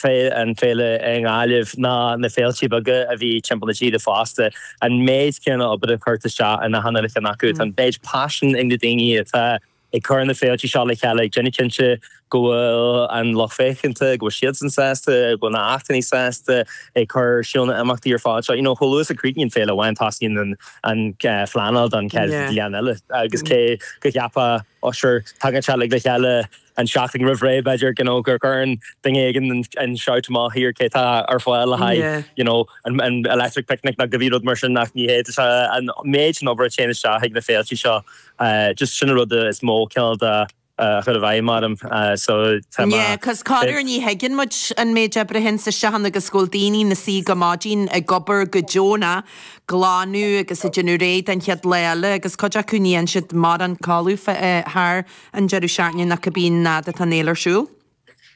féile, an féile i nGaillimh ná na féiltí beaga a bhí timpeall na tíre fosta, an méid céanna obair atá curtha isteach in achan cheann acu. Tá an méid paisin ag na daoine atá ag cur na féiltí seo le chéile ag déanamh cinnte go bhfuil an lucht féachanta, go bhfuil siadsan sásta, go bhfuil na h-achainí sásta, ag cur ar siúl na h-imeachtaí ar fad seo. You know chomh luath is a chríochnaíonn féile amháin tosaíonn an an phleanáil don chéad bhliain eile agus cé go gceapfá oh sure tagann sé uilig le chéile An tseachtain roimh ré, b'fhéidir, you know, go gcuireann duine éigin an shout amach, here, cé tá ar fáil le haghaidh, you know, an Electric Picnic nó cibé rud mar sin ach ní hé. Tá an méid den obair a théann isteach chuig na féiltí seo, just sin an rud is mó cineál de a chuir i bhfeidhm orm. So, tá mé. Yeah, cos corruair ní thuigeann muid an méid oibre a théanns isteach ann agus go bhfuil daoine na suí go maidin ag obair go deonach ag glanadh agus ag déanamh réidh don chéad lá eile agus cuid acu ní dhéanann siad mórán codladh thar An deireadh seachtaine nó cibé nuair atá an fhéile ar siúl?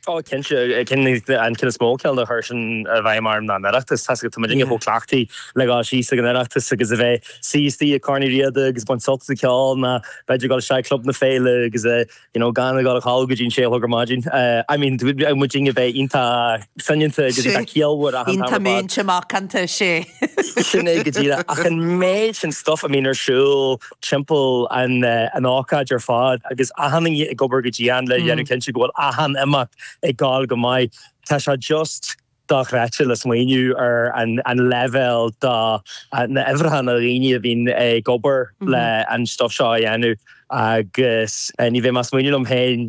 Ó cinnte, an ceann is mó cineál a chuir sin i bhfeidhm orm ná an Oireachtas. Tá a fhios agat tá muidinne chomh cleachtaithe le dhul síos ag an Oireachtas agus a bheith suí istigh ag Corn Uí Riada agus baint sult as an cheol ná b'fhéidir ag dul isteach i gclub na féile agus you know gan a dhul a chodladh go dtí an sé a chlog ar maidin. I mean tá muidinne bheith iontach soineanta agus iontach ciallmhar ach an t-am ar fad. Iontach múinte macánta, 'sé. Sin é go díreach ach an méid sin stuff a bhíonn ar siúl timpeall an ócáid ar fad agus achan duine ag obair go dian le dhéanamh cinnte go bhfuil achan imeacht ag goil go maith. Tá sé just dochreidte le smaoineamh ar an leibhéal de na huimhreacha na daoine a bhíonn ag obair le an stuif seo a dhéanamh agus ní bheidh mé ag smaoineamh liom féin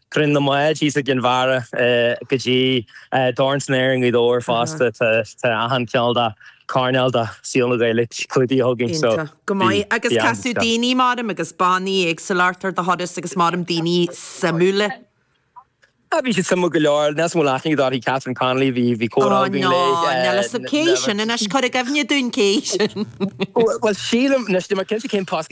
Cruinniú na mBád thíos i gCinn Mhara go dtí Dorn san Aer i nGaoth Dobhair fosta. Tá achan chineál de coirnéal de shaol na Gaeilge clúdaithe againn. Iontach go maith. Agus casadh daoine maram agus bannaí éagsúla ort ar do thuras agus maram daoine suimiúla? Bhí siad suimiúil go leor. Níl a fhios agam ar chuala tú fá dtaobh daoithi, Catherine Connolly, bhí comhrá againn léi. Ó no, níl a fhios agam, cé hí sin anois? Cuir i gcuimhne dúinn cé hí sin. Bhuel sílim, anois níl mé cinnte cén post,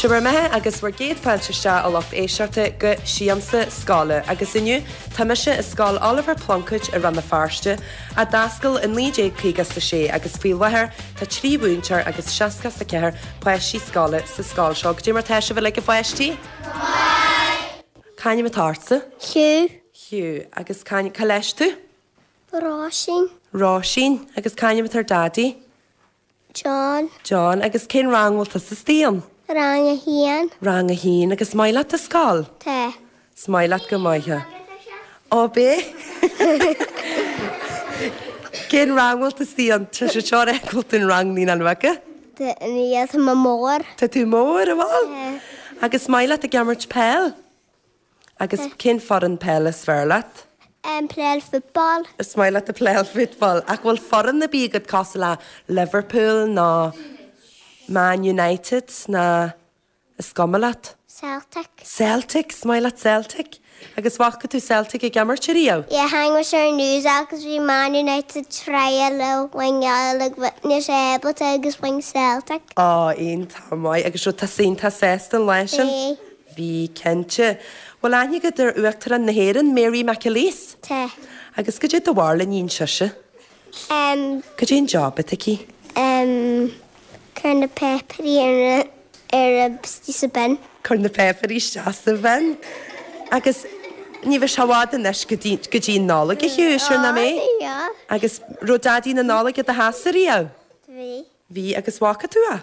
Sé bhur mbeatha agus bhur gcéad fáilte isteach, a lucht éisteachta, go Siamsa Scoile, agus inniu tá mise i Scoil Oliver Plunkett i Rann na Feirste, a d'oscail i 1956, agus faoi láthair tá trí mhúinteoir agus seasca is a ceathair páistí scoile sa scoil seo. Goidé mar tá sibh uilig a pháistí? Go maith! C'ainm atá ortsa? Hugh. Hugh. Agus c'ainm, cá leis tú? Róisín. Róisín, Agus cén t-ainm atá ar do dhaidí? John. John, Agus cén rang a bhfuil tusa istigh ann? Rang a haon. Rang a haon, Agus an maith leat an scoil? Tá. Is maith leat go maith é. Ó ab é? Cén rang a bhfuil tú istigh ann? Tá sé seo reidh go bhfuil tú in rang naoi ná nóice? Tá, níl, tá mé mór. Tá tú mór, a bhfuil? Tá. Agus an maith leat ag imirt peil? Agus cén foireann peile is fearr leat? Em, playáil football. Is maith leat ag playáil football. Ach an bhfuil foireann ar bith agat cosúil le Liverpool nó Man United nó is cuma leat? Celtic. Celtic, is maith leat Celtic. Agus an bhfaca tú Celtic ag imirt ariamh? Yeah, chonaic mé ar an news agus bhí Man United ag tryáil le win like witness able to agus bhain Celtic. Ó, iontach maith agus is dócha go raibh tú sásta leis sin? Bí cinnte. Bhuel, an aithníonn tú Uachtarán na hÉireann, Mary McAleese? Tate. Agus goidé do bharúil a níonn sise? Em. Goidé an job atá aici? Em, cur na péipearí ar a, ar a, istigh sa bin. Cur na péipearí isteach sa bhin. Agus ní bheidh sé i bhfad anois go dtí, go dtí an Nollaig, a Sheoirse, an mbeidh? Ó, bhí, bhí. Agus an raibh Daidí na Nollag i do theachsa ariamh? Bhí. Bhí. Agus an bhfaca tú é?